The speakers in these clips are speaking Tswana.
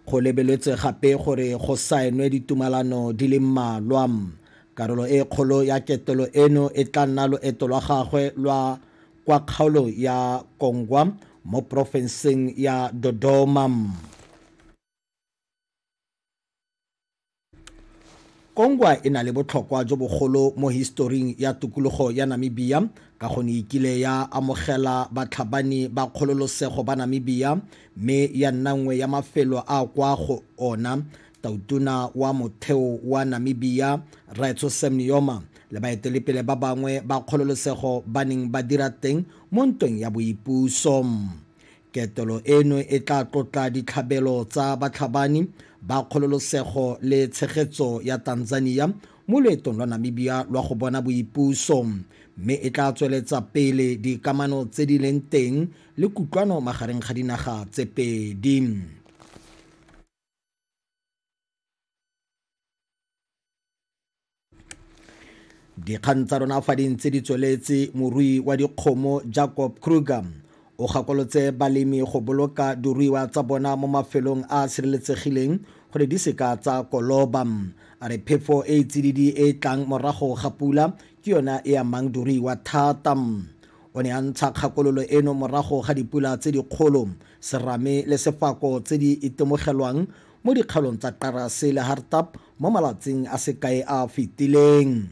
Go lebeletswe gape gore go saenwe ditumalano di le mmalwa. Karolo e kgolo ya ketelo eno e tla nna loeto lwa gagwe lwa kwa kgaolo ya Kongwa mo porofenseng ya Dodoma. Kongwa e na le botlhokwa jo bogolo mo historing ya tokologo ya Namibia ka go ne e kile ya amogela batlhabani ba kgololosego ba Namibia mme ya nna nngwe ya mafelo a kwa go ona tautona wa motheo wa Namibia Raetso Sam Nujoma le baetelepele ba bangwe ba kgololosego ba neng ba dira teng mo ntweng ya boipuso. Ketelo eno e tla tlotla ditlhabelo tsa batlhabani ba kgololosego le tshegetso ya Tanzania mo loetong lwa Namibia lwa go bona boipuso, mme e tla tsweletsa pele dikamano tse di leng teng le kutlwano magareng ga dinaga tse pedi. dikgang tsa rona fa di ntse di tsweletse morui wa dikgomo jacob kruger o gakolotse balemi go boloka diruiwa tsa bona mo mafelong a a sireletsegileng gore di seka tsa koloba a re phefo e e tsididi e e tlang morago ga pula ke yona e amang diruiwa thata o ne a ntsha kgakololo eno morago ga dipula tse dikgolo serame le sefako tse di itemogelwang mo dikgaolong tsa Qarase le Hartap mo malatsing a se kae a a fetileng.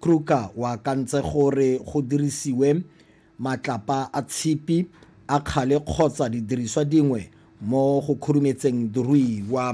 Kruger o akantse gore go dirisiwe matlapa a tshipi, a kgale kgotsa didiriswa dingwe mo go khurumetseng diruiwa.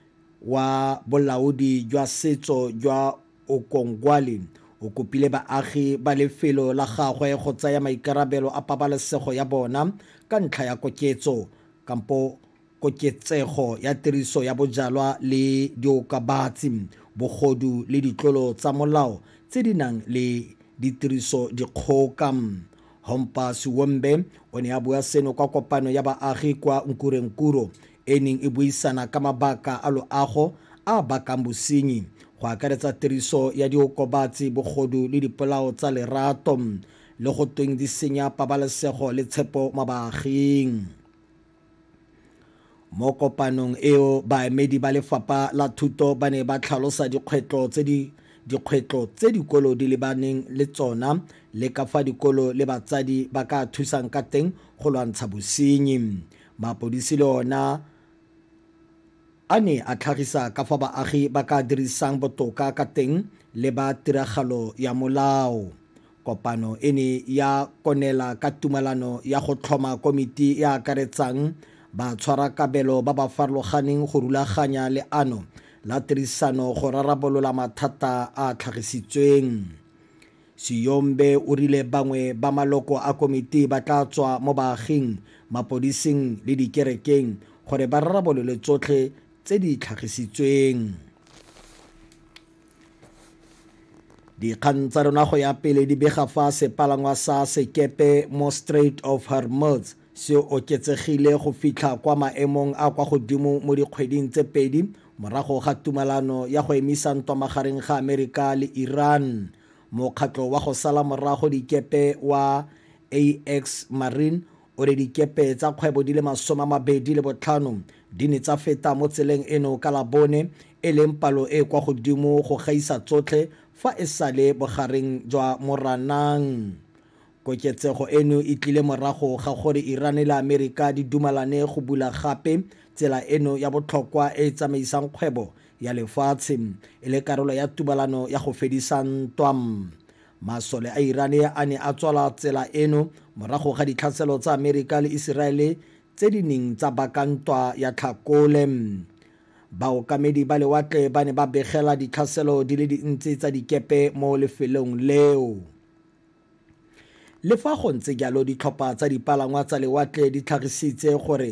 wa Bolaodi jwa Setso jwa Okongwali o kopile baagi ba lefelo la gagwe go tsaya maikarabelo a pabalesego ya bona ka ntlha ya koketso kampo koketsego ya tiriso ya bojalwa le diokabatsi, bogodu le ditlolo tsa molao tse di nang le ditiriso dikgoka. Hompa Siwombe o ne a bua seno kwa kopano ya baagi kwa Nkurenkuro e neng e buisana ka mabaka a loago a a bakang bosenyi, go akaretsa tiriso ya diokobatsi, bogodu le dipolao tsa lerato, le go tweng di senya pabalesego le tshepo mo baaging. Mo kopanong eo, baemedi ba Lefapha la Thuto ba ne ba tlhalosa dikgwetlho tse di dikgwetlho tse dikolo di lebaneng le tsona le ka fa dikolo le batsadi ba ka thusang ka teng go lwantsha bosenyi. Mapodisi le ona a ne a tlhagisa ka fa baagi ba ka dirisang botoka ka teng le ba tiragalo ya molao. Kopano e ne ya konela ka tumalano ya go tlhoma komiti e akaretsang batshwarakabelo ba ba farologaneng go rulaganya leano la tirisano go rarabolola mathata a a tlhagisitsweng. Siyombe o rile bangwe ba maloko a komiti ba tla tswa mo baaging, mapodising le dikerekeng gore ba rarabolole tsotlhe tse di tlhagisitsweng. Dikgang tsa rona go ya pele di bega fa sepalangwa sa sekepe mo Strait of Hormuz Se oketsegile go fitlha kwa maemong a kwa godimo mo dikgweding tse pedi morago ga tumalano ya go emisa ntwa magareng ga Amerika le Iran. Mokgatlho wa go sala morago dikepe wa AX Marine o re dikepe tsa kgwebo di le masome a mabedi le botlhano di ne tsa feta mo tseleng eno ka Labone, e leng palo e e kwa godimo go gaisa tsotlhe fa e sale bogareng jwa Moranang. Koketsego eno e tlile morago ga gore Iran le Amerika di dumalane go bula gape tsela eno ya botlhokwa e e tsamaisang kgwebo ya lefatshe e le karolo ya tumalano ya go fedisa ntwa. Masole a Iran a ne a tswala tsela eno morago ga ditlhaselo tsa Amerika le Iseraele tse di neng tsa baka ntwa ya Tlhakole. Baokamedi ba lewatle ba ne ba begela ditlhaselo di le dintsi tsa dikepe mo lefelong leo. Le fa go ntse jalo, ditlhopha tsa dipalangwa tsa lewatle di tlhagisitse gore